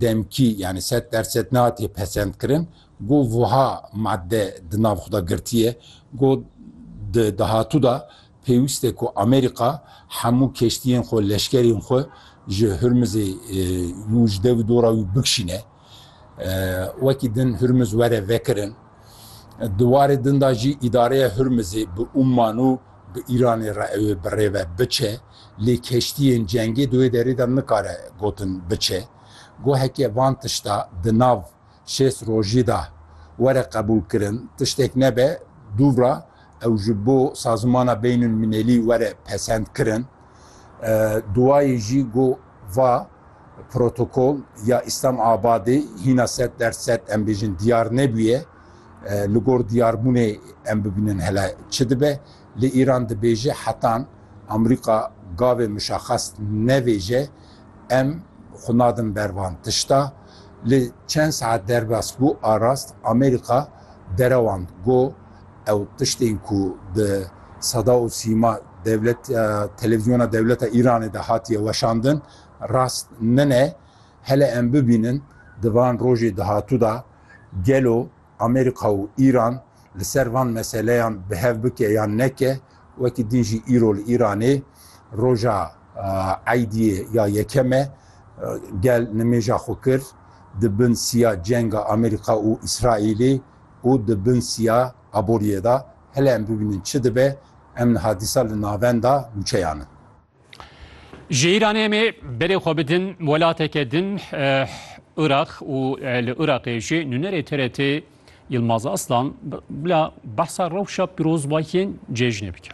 demkî yanî sed der sed nehatiye pesendkirin ku wiha madde di nav xwe de girtiye ku di dahatû de pêwîst e ku Amerîka hemû keştiyên xwe û leşkerên xwe ji Hurmizê û ji dev û dora wî bikişîne wekî din Hurmiz were vekirin. Di warê din de jî îdareya Hurmizê bi Umman û bi Îranê re ew ê bi rê ve biçe. Lê keştiyên cengê di wê derê de nikare gotin biçe. Goheke van tişta di nav şêst rojî de were qebûlkirin tiştek nebe, dûvra ew ji bo sazimana beynulmînelî were pesendkirin. Duwayê jî go va protokol ya Îslam Abadê hîna sed der sed em bêjin diyar nebûye. Li gor diyarbûnê em bibînin hele çi dibe. Lê Îran dibêje hetan Amerîka gavê muşaxas nevêje em xwe nadin ber van tişta. Lê çend saet derbas bû arast Amerîka derewand got ew tiştên ku bi seda û sîma dewleta televîzyona dewleta Îranê de hatiye weşandin rast nine. Hele em bibînin di van rojê dahatû de gelo Amerîka û Îran li ser van meseleyan bi hev bike yan neke, wekî din jî îro li Îranê roja Eydiyê ya yekem e, gel nimêja xwe kir di bin siya cenga Amerîka û Îsraîlê û di bin siya aboriyê de. Hele em bibînin çi dibe, em niha dîsa li navenda nûçeyan in. Ji Îranê em ê berê xwe bidin welateke din Iraq û li Iraqê jî nûnerê TRT Yilmaz Aslan bila behsa rewşa pîrozbahiyên cejnê bike.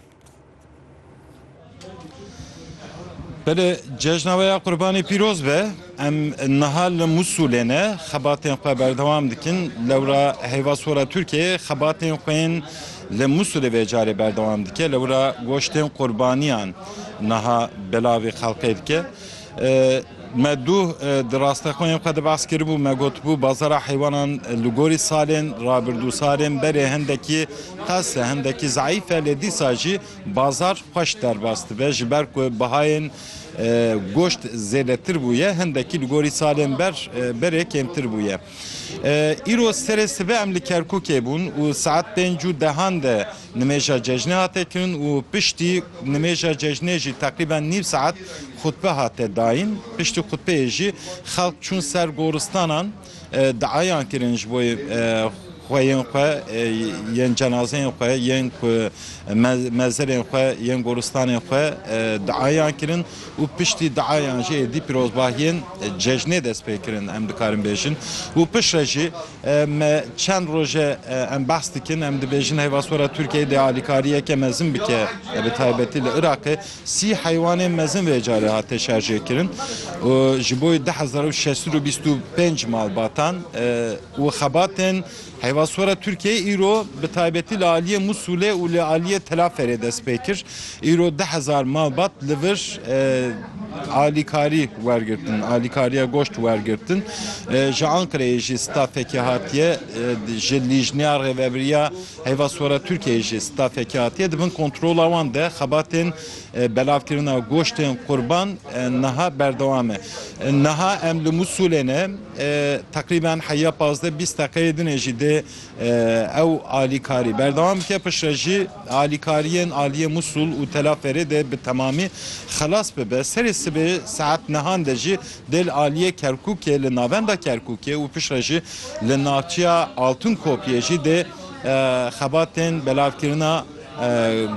Belê cejna we ya qurbanî pîroz be. Em niha li Mûsulê ne, xebatên xwe berdewam dikin. Lewra heyva sor e Tirkiyeyê xebatên xwe yên li Mûsulê vê carê berdewam dike. Lewra goştên qurbaniyan niha belavê xelkê dike. Me duh di rastexweyên xwe de behs kiribû, me gotibû bazara heywanan li gorî salên rabirdû, salên berê hendekî qas e, hendekî zayîf e lê dîsa jî bazar xweş derbas dibe ji ber ku bihayên Goşt zêdetir bûye, hindekî li gorî salên ber berê kêmtir bûye. Îro serê sibê em li Kerkûkê bûn û saet pênc û dehan de nimêja cejnê hate kirin û piştî nimêja cejnê jî teqrîben nîv saet xutbe hate dayîn. Piştî xutbeyê jî xelk çûn ser goristanan. diayan kirin ji bo xweyên xwe yên cenazeyên xwe yên ku mezirên xwe yên goristanên xwe diayan kirin û piştî diayan jî êdî pîrozbahiyên cejnê dest pê kirin em dikarin bêjin û piştre jî me çend roje em behs dikin em dibêjin heyvasora Tirkiyeyê dê alîkariyeke mezin bike bi taybetî li Iraqê Sî heywanên mezin vê carê hate şarjêkirin û ji bo du hezar û şeş sed û bîst û pênc malbatan û xebatên heyvaswara Tirkiyeyê îro bi taybetî li aliyê Mûsulê û li aliyê Telaferê dest pê kir. Îro du hezar malbat li vir alîkarî wergirtin, alîkariya goşt wergirtin. Ji Anqereyê jî stafekê hatiye ji Lîjneya Rêveberiya Heyva Sora Tirkiyeyê jî stafekî hatiye di bin kontrola wan de xebatên belavkirina goştên qurban niha berdewam e. Niha em li Mûsulê ne, teqrîben heya pazdeh bîst deqeyê din e jî dê ew alîkarî berdewam bike. Pişt re jî alîkariyên aliyê Mûsul û Telaferê dê bi temamî xelas bibe. Serê sibê saet nehan de jî Dê li aliyê Kerkûkê, li navenda Kerkûkê û piştre jî li navçeya Altunkopiyê jî dê xebatên belavkirina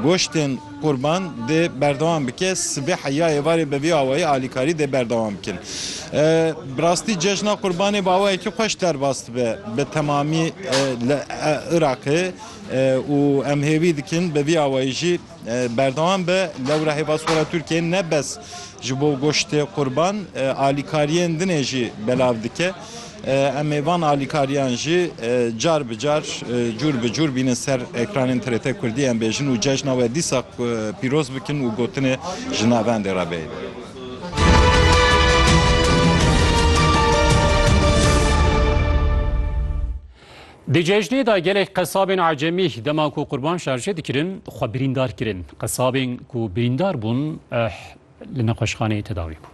goştên qurban dê berdewam bike. Sibê heya êvarê bi vî awayî alîkarî dê berdewam bikin. Bi rastî cejna qurbanê bi awayekî xweş derbas dibe bi temamî li Iraqê û em hêvî dikin bi vî awayî jî Berdewam be lewra hêvasxwera Tirkiyeyê ne bes ji bo goştê qurban alîkariyên din ê jî belav dike. Em ê van alîkariyan jî car bi car, cûr bi cûr bînin ser ekranên TRT Kurdî em bêjin û cejna we dîsa pîroz bikin û gotinê ji navendê re bê. Di cejnê de gelek qesabên ecemî dema ku qurban şarje dikirin xwe birîndar kirin. Qesabên ku birîndar bûn li nexweşxaneyê tedawî bûn.